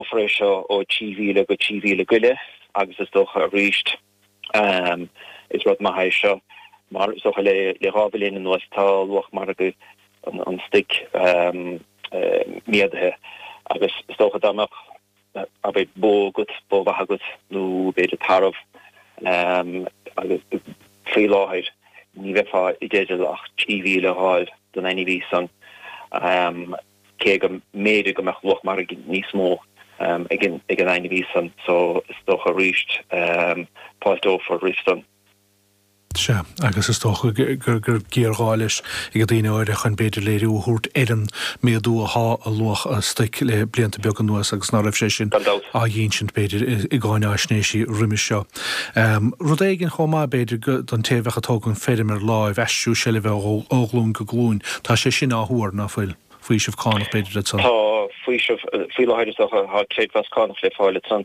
go bhfara seo ó trí mhíle go trí mhíle go leith agus is dócha arís is rud maith é seo mar is dócha le dhá bhliain anuas tá luach margaidh an stuic méadaithe agus is dócha dá mbeadh abair bó agat, bó mhaith agat nó b'fhéidir tarbh agus faoi láthair ní bheifeá i dteideal ach trí mhíle a fháil don ainmhí san. cé go mb'fhéidir go mbeadh luach margaidh níos mó ag an ainmhí san so is dócha arís fáilteofar roimis sin. Sea, agus is dócha go raibh géarghá leis ag daoine áirithe chun, b'fhéidir, léiriú a thabhairt ar an méadú athá i luach a stoic le blianta beaga anuas agus ná raibh sé sin á dh'ínsint, b'fhéidir, i gcáináisnéisí roimis seo. Rud éigin chomh maith, b'fhéidir, don té a bheadh ag tógaint feirm ar láimh, aistriú seilbhe ó ghlúin go glúin. Tá sé sin á thuar, ná fuil? Faoiseamh cánach, b'fhéidir, le san? Tá faoiseamh, faoi láthair is dócha, tá creidmheas cánach le fáil le san,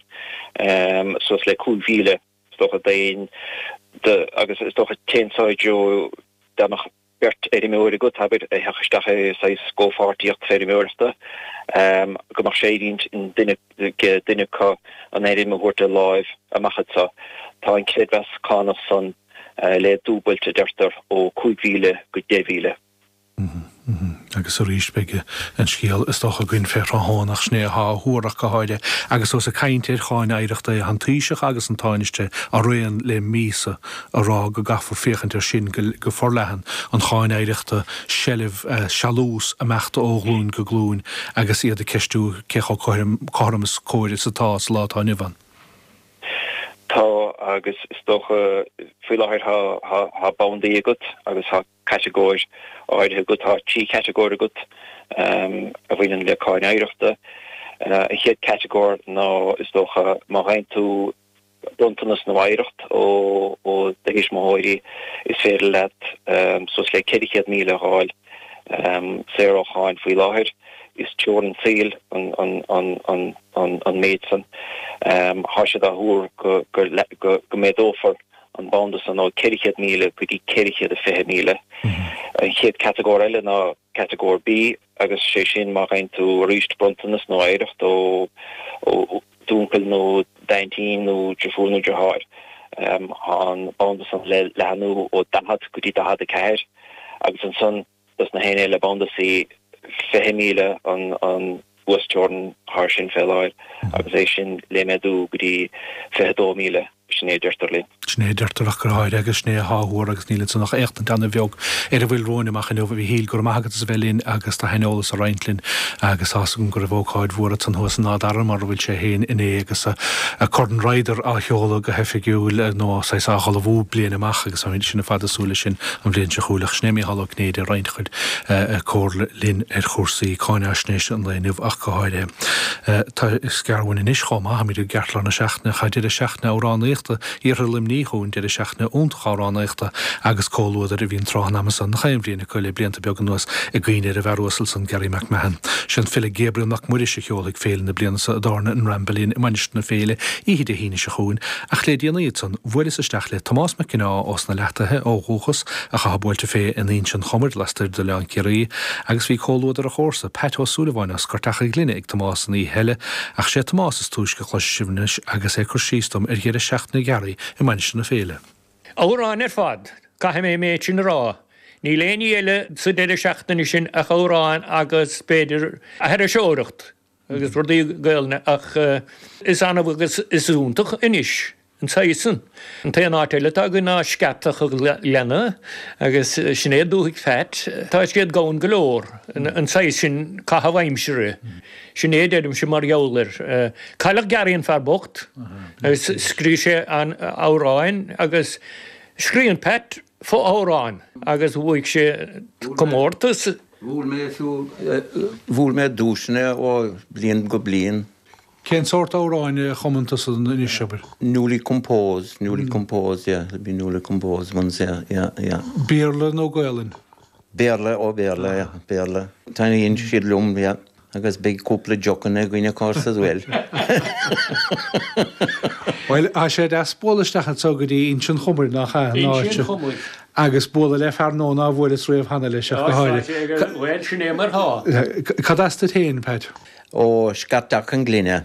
suas le cúig mhíle, is dócha, d'aon, agus is dócha téann san i dtreo beagnach, beirt fheirmeoir agat, abair, a thiocfadh isteach i saghas comhpháirtíocht feirmeoireachta, go mbeadh sé ar intinn ag duine acu an fheirm a thabhairt de láimh amach anseo. Tá an creidmheas cánach san le dúbailt, a deirtear, ó 5,000 go 10,000. Agus arís beidh an scéal, is dócha, againn fé thráthnóna, ach sin é atá á thuar ach go háirithe. Agus ós ag cainnt ar Cháin Oidhreachta tá an Taoiseach agus an Tánaiste araon le míosa a rá go gcaithfear féachaint air sin go forleathan, an Cháin Oidhreachta, seilbh, sealús, ag imeacht ó ghlúin go glúin agus iad ag ceistiú cé chomh cothrom is cóir atá sa lá atá inniu ann. Tá agus is dócha faoi láthair tá bandaí agat agus tá catagóir áirithe agat, tá trí chatagóir agat a bhaineann le Cáin Oidhreachta. An chéad catagóir ná is dócha má gheibheann tú, Bronntanas nó oidhreacht ó do thuismitheoirí, is féidir leat suas le £400,000 a fháil saor ó cháin faoi láthair. Is teorainn saoil an méid san. Tá sé á thuar go méadófar an banda san ó £400,000 go dtí £420,000. An chéad chatagóir eile ná catagóir B agus sé sin má gheibheann tú arís bronntanas nó oidhreacht ó. d'úncail nó d'aintín nó driofúr nó driotháir an banda san le leathnú ó 40 go dtí 44 agus ansan dos na haoinne i mbanda C 20 míle an uasteorainn ansan fé láthair agus é sin le méadú go dtí 22 míle. Sin é a deirtear linn. Sin é a deirtear ach go háirithe agus sin é athá á thuar agus níl ansan ach éachtaint ana-bheag ar a bhfuil romhainn amach inniu. A Mhíchíl, go raibh maith agat as a bheith linn agus do shaineolas a roinnt linn agus tá's agam go raibh ócáid mhór a'tsa thuas in Áth Dara mar a bhfuil sé fhéin inné agus a' Corn Ryder á sheoladh go hoifigiúil nó saghas á hullmhú bliain amach agus táimid ansin a' fad a' súil leis sin an bhliain seo chugainn. Ach sin é Mícheál Ó Cinnéide a' roinnt a chuid comhairle linn ar chúrsaí cáinaisnéise an lae inniu ach go háirithe. Tá Scarwin anois chomh maith, táimid i gceartlár na seachtaine, tá deireadh seachtaine amhránaíochta iarthar Luimnigh chugainn, deireadh seachtaine iontach amhránaíochta agus comhluadair a bhíonn tráth an ama san, nach aon bhliain acu le blianta beaga anuas i gcuimhne ar an bhfear uasal san, Garry McMahon. Sé an file Gabriel Mac Muiris a sheolfaidh féile na bliana seo i dtábhairne an Ramble Inn i Mainistir na Féile oíche Dé hAoine seo chugainn, ach le déanaí ansan bhuaileas isteach le Tomás Mac Ginneá ós na Leathtaithe ó dhúchas ach athá buailte fé in Inse an Chomair lastoir d'Oileán Ciarraí agus bhí comhluadar a chomharsa Pat Ó Súilleabháin as Scairteach an Ghlinne ag Tomás an oíche eile, ach sé Tomás is túisce a chloisfidh sibh anois agus é ag cur síos dom ar dheireadh seachtaine Gharry i Mainistir na Féile. Amhráin ar fad, caithfidh mé an méid sin a rá. Níl aon ní eile sa deireadh seachtaine sin ach amhráin agus, b'fhéidir, aithriseoireacht agus rudaí Gaolainne ach is annamh agus is iontach anois an saghas san. An t-aon áit eile atá againn ná Scairteach an Ghleanna agus sin é dúthaigh Phat. Tá siad gann go leor an saghas sin caitheamh aimsire. Sin é a deirimse mar gheall air. Cailleadh Garry an fear bocht agus scríobh sé an-amhráin agus scríobhann Pat fo-amhrán agus bhuaigh sé comórtas. Bhuaigh mé duaiseanna ó bhliain go bliain. Cén sórt amhráin a chumann tusa anois, abair? Newly composed, newly composed, yeah, it'd be newly composed ones, yeah, yeah, yeah. Béarla nó Gaelainn? Béarla, ó Béarla, yeah, Béarla. Taitníonn siad liom, yeah, agus beidh cúpla deochanna againn of course as well. Bhuel, tá sé deas bualadh isteach anseo go dtí Inse an Chomair, nach ea? Inse an Chomair. agus bualadh le fear nua nár bhuaileas riamh cheana leis ach go háirithe. Bhuel, sin é mar thá. Cad as duit féin, Pat? Ó, Scairteach an Ghlinne.